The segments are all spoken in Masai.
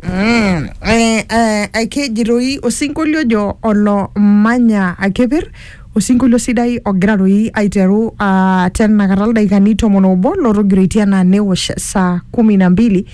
Mm, eh, eh, akeji toi osinkolio ojo olo manya akepir osinkolio sidai ogira toi aiteru uh, tenakata ildaikani tomon obo lotogiroitie anaa newosh saa kumi na mbili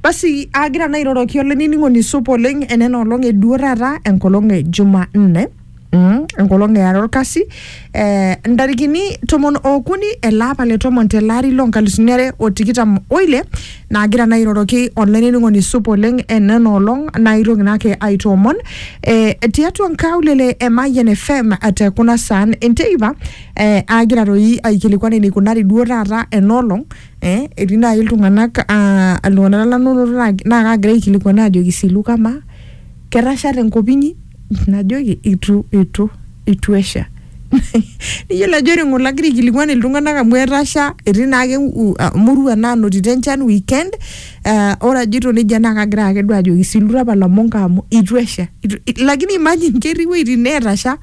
basi agira naa airoroki olainining'oni supa oleng enena olong eduo taata enkolong e jumanne Mm, enkolong eare olkasi eh, ntarikini tomon okuni ele apa le tomon tele ari loo nkalisuni are o tikitam oile naagira naa airoroki olainining'oni supa oleng enena olong naitoki naake aitoomon eh, tiatua nkaulele e Mayian FM te kuna saan enteipa eh, aagira toi aikilikuan eneikunari duo taata ena olong eh, etii naaji iltung'anak ah, iltung'anak lanonoto naa naa kaagira aikilikuan ajoki silu kamaa ketasha tenkop inyi najoki itu itu itu esha niyiolo ajo ore ng'ole agira aikilikuan iltung'anak amu etasha etii naake u- a- murua naanotito enchan weekend uh, ore ajito nejia naa kagira ake duo ajoki silura apa lamonka amu itu esha itu, i- lakini imagine ketii iwuejitin neetasha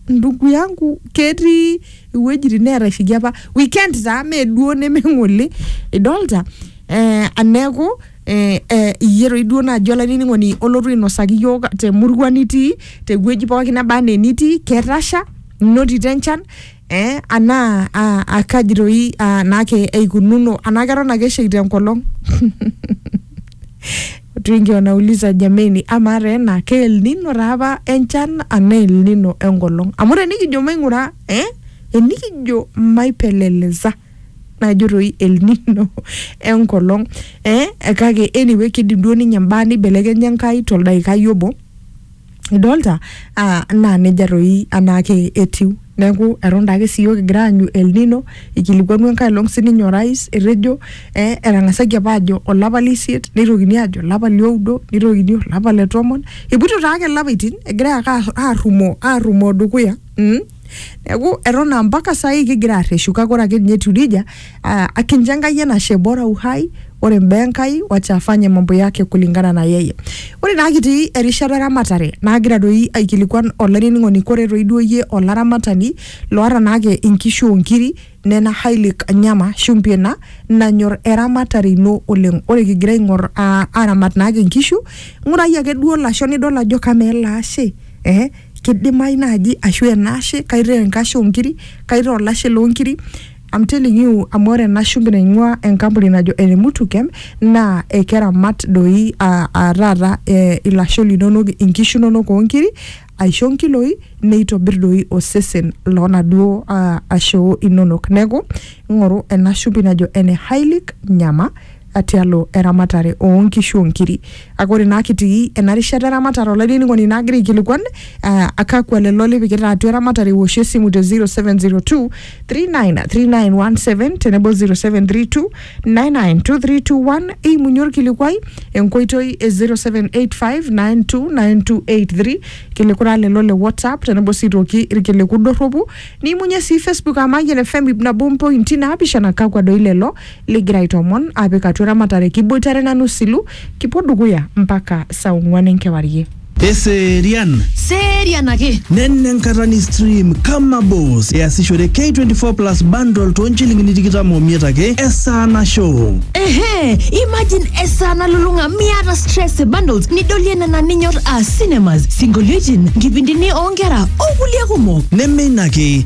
ndugu yangu ketii iwuejitin neetashiki apa weekend taa mee duo neme ng'ole idolta eh, neeku eh, eh, iyie toi duo naaji olainining'oni olotu ainosaki iyiook temurua nitii tewueji pookin neba anaa enitii ketasha inotito enchan eh, anaa ah, ah, kaji toi ah, naake eikununo anaa keton ake esheita enkolong watu wengi wanauliza jameni ama taa ena ke El Nino taa apa enchan anaa El Nino enkolong amu tenikijo maing'ura eh, enikijo maipeleleza najo toi El Nino enkolong eh, kake anyway kidim duo ninye mbaa nibelekenya Enkai toldaikai obo idolta ah, naa nejia toi anaake etiu neeku eton daake siyiok kigira aanyu El Nino ikilikuanu enkae olong sininye orais etejo eh, etang'asaki apa aajo olapa leisiet neitokini aajo olapa lioudo neitokini olapa le tomon epuoito taake ilapaitin egirae ake arrumoo arrumoo dukuya mm. Neaku eton aa mpaka saai kigira arreshu kake ore ake ninye etiu nejia ah, akincho Enkai enashe bora uhai ore imbaa Enkai wacha afanye mambo yake kulingana na yeye. Ore naa kitii erishata e ramatare naagira doi aikilikuan olainining'oni kore toi duo iyie olaramatani loata naake inkishu o nkiri Nena Hailik Nyama, shumbi ena nanyor eramatare ino oleng. Ore kigira aing'or aa aramat naake nkishu, ng'urai ake duo lasho nidol ajo kamaa ele ashe eh kidimayu naaji ashu ena ashe kaitaa enkashe oo nkiri, kaitaa olashe loo nkiri. I'm telling you amu ore ena shumbi naing'ua enkampuni najo ene Mutukem naa ekeramat doi aa aa taata ilasho linonok, inkishu inonok oo nkiri aisho nkiloi neitobir doi osesen loonaduo ah, ashoo inonok neeku ing'oru ena shumbi najo ene hylic nyama ah, tialo eramatare oonkishu onkiri kake ore naa kitii ena rishata eramatare olainining'oni naagira aikilikuan ah, kakwa lelo lipikita atua eramatare iwoshie esimu te 0702 393917 tenebo 0732 992321 eimunye orkilikuai enkoitoi e 0785929283 kilikura lelo le whatsapp tenebo sii toki irkiliku dorropu niimunye sii facebook amayian fm ip nabo mpointi naapishana kakwa doi lelo ligira aitomon apik atua eramatare kiboitare nanu silu kipuo dukuya mpaka saa ong'uan enkewarie Eserian. Serian ake. Nena enkata ni stream kama boss easishore K24 plus bundle too nchilingini tikitam omiet ake esaa nasho. Ehe, imagine esaa nalulung'a miata stress e bundles nidolie nena ninyor aa cinemas, sinkolioitin, nkipindini oonkera o kulie kumok. Neme ina ake,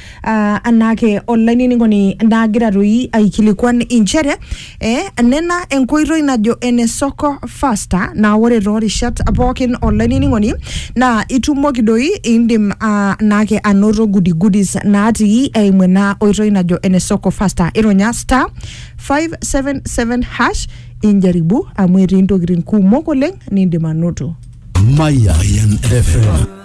uh, anaake olainining'oni naagira toi aikilikuan inchere eh, nena enkoitoi najo ene soko faster naa ore toorishat pookin olainining'oni naa itumoki doi indim uh, naake anoto gudigudis natii eimu ena oitoi najo ene soko faster ironya star 577 hash injaribu amu etii intokitin kumok oleng nindim anoto Mayan FM.